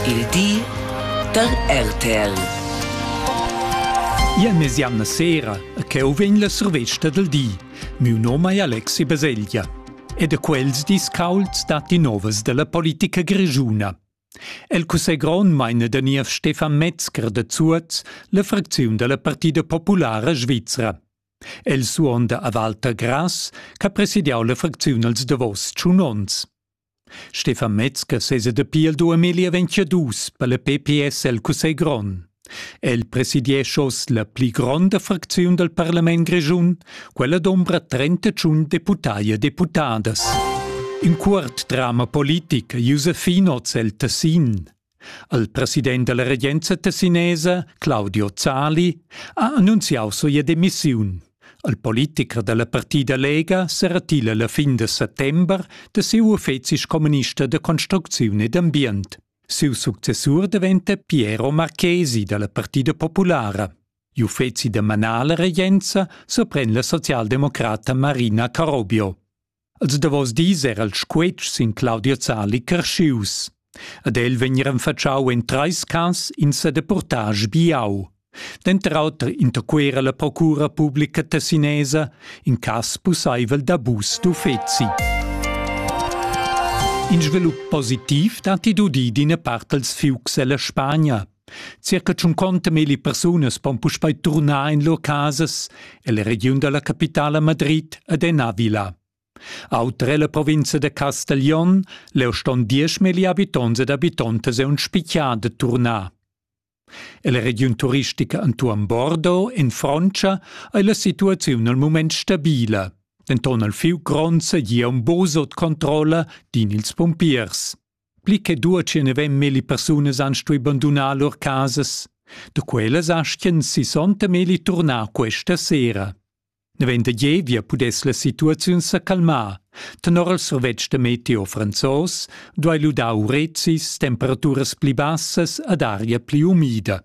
Il di da RTL. Ia mesianna sera ch'eu vegn la survesta del di. Miu nom è Alexi Beseglia e da quels dis caulds datti novas della politica grigiuna. El cussegron meine der niev Stefan Metzger de Zuoz la fracziun della Partida Populara Svizzera. El suonda a Walter Grass, che presidiau la fracziun als davos tschun ons. Stefan Metzger sesa dapi il 2022 per la PPS el Cussegl grond. El presidiescha oz la pli gronda fracziun dal parlament grischun, quella d'ombra 31 deputai e deputadas. In cuort drama politic Josefin hoz el Tessin. Il president dalla regenza tessinesa, Claudio Zali, ha annunziau sia demissiun. Il politicher dalla partida Lega seratila la fin de settember de siu uffeci communista de construcziun ed ambient. Siu successur diventa Piero Marchesi dalla Partida Populara. Gli uffeci da manala regenza sorprende la socialdemocrata Marina Carobio. Els davos dis era il squetsch sin Claudio Zali carschius. Ad el vegn renfatschau en treis cas in sedeportage biau. Denter auter interquera la procura publica tessinesa in cass pusseivel d'abus d'uffeci. In svilup positiv datti d'udir d'ina part dals fiucs ella Spagna, Circa tschunconta milli persunas pon puspei turnar in lur casas ella regiun dalla capitala Madrid ed en Avila. Auter ella provinza de Castiglion leu ston diesch milli habitonts ed habitontas ein spitgia de turnar. Ella regiun turistica entuorn Bordeaux in Frontscha ei la situaziun al mument stabila. Denton al fiu gronds e gia un bosot controlla din ils pumpiers. pli che duatschi ne vem melli persunas han stui bandunar lur casas. Da quellas aschien sissonta melli turnar questa sera. Nevent da Gievia pudess la situaziun sa calmar. Tenor il survetsch da meteo franzos duai ludar urezis, temperaturas pli bassas ed aria pli umida.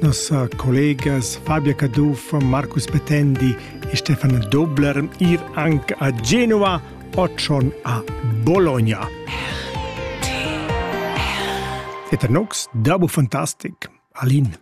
nossa collegas Fabia Cadufa, Marcus Petendi e Stefan Dobler ir anche a Genova occion a Bologna. Et nox, dabo fantastic, Alin.